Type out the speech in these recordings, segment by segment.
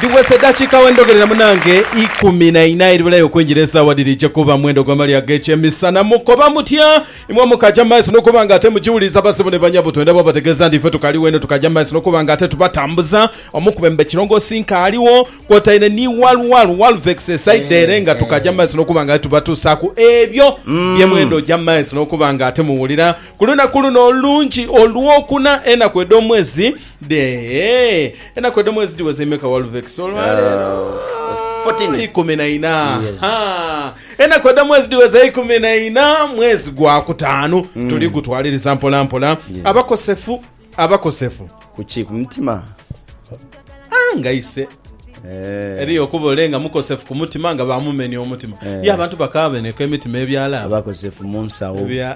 Dhiwese edhakiika we ndhogerera munange ikumi na ina edhibulayo okwingira esaawa dhiri je kuba mwendo gwa mali ag'ekyemisana. Mukoba mutya? Imwe mukaja mu maiso n'okuba nga ate mugiwuliriza basebo ni banyabo, twendha bwabategeeza nti ife tukaliwo inho tukaja mu maiso n'okuba nga ate tubatambuza. Omu ku bemba ekirongoosi nkaaliwo kwotaire ni Walwal Walvex e saidi ere nga tukaja mu maiso n'okuba nga ate tubatuusaaku ebyo bye mwenda oja mu maiso n'okuba nga ate muwulira. Ku lunaku luno olungi Olwokuna enaku edh'omwezi Dheehee enaku edho mwezi dhiweza imeka Walvex olwaleero? Fourteen. Ikumi na ina Yes. Ha! enaku edho mwezi dhiweza ikumi na ina mwezi gwa kutaanu Mm. tuli gutwaliriza mpola mpola abakosefu abakosefu Kuki ku mutima? Ah, nga ise Eh. eriyo okuba ole nga mukosefu ku mutima nga bamumenya omutima Eh. ye abantu bakaabeneka emitima ebyalaaba Abakosefu mu nsawo. Ebya-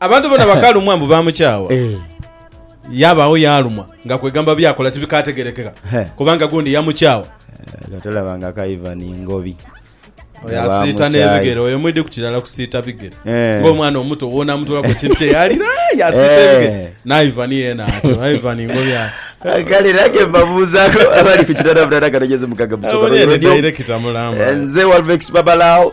Abantu bona bakalumwa mbu bamukyawa. Eh. Yabaawo yaalumwa nga kwegamba byakola tibikaategerekeka He. kubanga gundi yamukyawa. Nga tolaba nga ka Ivan Ngobi. Oyo Nga asiita bamukyaye. n'ebigere, oyo mwidhi ku kirala kusiita bigere. Eh. Ng'omwana omuto woonaamutolaku ekintu kye yaalira, aah, yaasiita Eh. ebigere. Ni Ivan yeena atyo, Ivan Ngobi aye. Kale nange mbabuuzaako abali ku kitanda butaata kanonyeze mukaga musonga Abonye ni lw'eyo. director mulamba. Nze Walvex Babalao.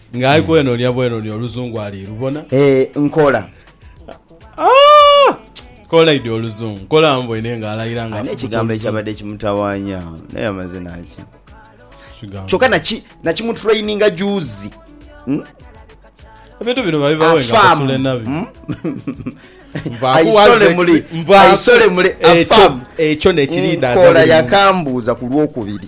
Nga ali kwenonia bwenonia oluzungu ali lubona. Eeh nkola. Aah! Kolaidhi oluzungu. Nkola mboine nga alaira nga afubuta oluzungu. Ani ekigambo ekyabadde kimutawanya? Naye amaze naki? Kyoka naki nakimutraininga juuzi. Ebintu bino babibawe nga basule nabi. Hmm? Aisole muli, aisole muli, afamu. Ekyo nekiri hmm, daza buli. Nkola yakambuuza ku lwokubiri.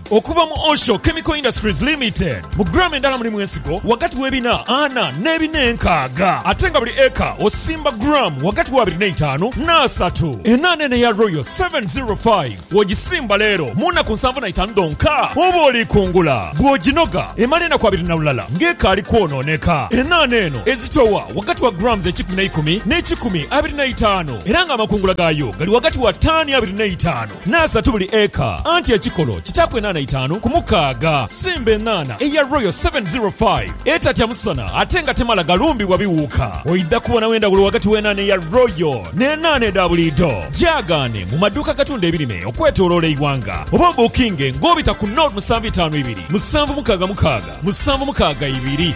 Okuva mu Osho Chemical Industries Limited, mu gram endala mulimu ensigo ghagati w'ebina ana n'ebina enkaaga ate nga buli eka osimba gram ghagati w'abiri n'eitaanu n'asatu. Enaana eno eya Royal 705 bw'ogisimba leero, mu naku nsanvu na itaanu dhonka oba oli kungula. Bw'oginoga emala enaku abiri na lulala ng'ekaali kwonooneka. Enaana eno ezitowa ghagati wa grams ekikumi n'eikumi n'ekikumi abiri n'eitaanu era ng'amakungula gaayo gali ghagati wa taani abiri n'eitaanu. N'asatu buli eka, anti ekikolo kitaaku enaana itaanu ku mukaaga. Simba enaana eya Royal 705 etatya musana ate nga temala galumbibwa biwuuka. Oidha kubonawo endhawulo ghagati w'enaana eya Royal n'enaana edha buliidho. Gyaagaane mu maduuka agatunda ebirime okwetooloola eighanga oba obuukinge ng'obita ku nol musanvu itaanu ibiri, musanvu mukaaga mukaaga, musanvu mukaaga ibiri.